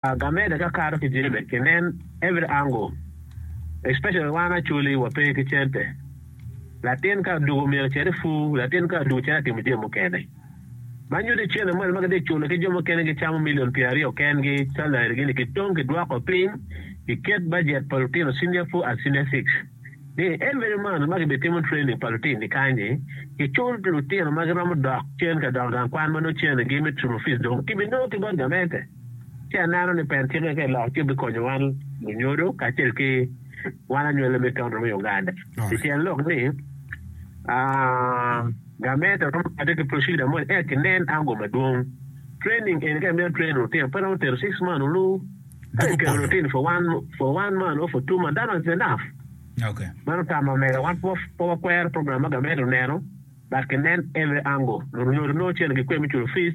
Gameda kakato ki jebe kinen every angle especially wan Acholi wape ki cente latin ka adugo myero ocit i pur latin ka adugo cit atimo jami mukene ma nyuto i cene moni ma gitye culo ki jo mukene gicamo million pyera aryo ken gi salary gi ni ki tong ki dwoko piny ki ket budget pa lutino senior four and senior six ni every month ma ki bi timo training pa lutin ni kany ni ki cul lutino ma giromo dok cen ka dok gang kwan ma nongo cene gi me school fees dong ki bi nongo ki bot gamente. Ci aneno ni pet cik-ke ka eloko ci bikonyo wan lunyodo kacel ki wan anywale me Tonro me Uganda. I tyen lok ni, Gamente romo kade ki procedure mo eka kinen ango madwong. Training eni ka imito train lutino pe romo tero six months olu. Ka ikelo lutino for one for one month or for two months that one is enough. Meno tama mega wan pe wakwero program ma gamente oneno but kinen every angle lunyodo nongo cente gikwe me culo fees.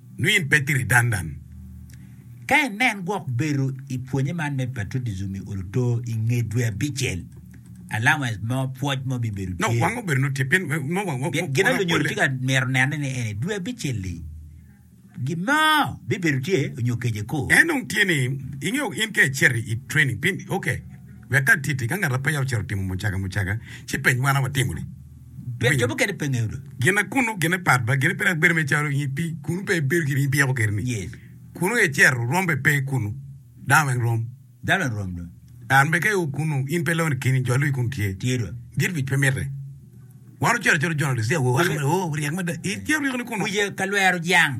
nongo in pe tiri dandan. Ka inen gwok bedo i pwonye man me patrotijim i Oluto i nge dwe abicel, allowance mo, pwoc mo bibedo tye. Nongo wango bedo nongo tye pien nongo wa, wa, Gin ma lunyodo tye ka mito neno ni eni dwe abicel-li gin mo bibedo tye onyo kece ko. En dong tye ni ingeyo in ka icito i training pin ok wek ka titi ka ngat ape ya ocito timo mucaga mucaga ci peny wan a watimo ni. Pire cobo kene pe ngeyo dong. Gine kunu, gine pat ba, gine pe dok bedo me caro nyi pi, kunu pe ibedo gire nyi pi yako keri ni. Yes. Kunu e cero, rom be pe kunu. Dano weng rom. Dano weng rom dong. An be ka i o kunu, in pe loni keni, jo luyi kunu tye. Tye dong. Gin wic pe mite. Wan ocito acota journalist, ya wo, aka mere, oh, ryek mada. I cero ryeko ni kunu. Wiye ka lwero jang.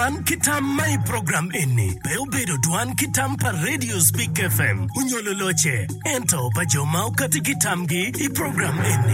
Dwan ki tam ma i program eni pe obedo dwan ki tam pa Radio Speak FM onyo loloce, ento pa jo ma okati ki tamgi i program eni.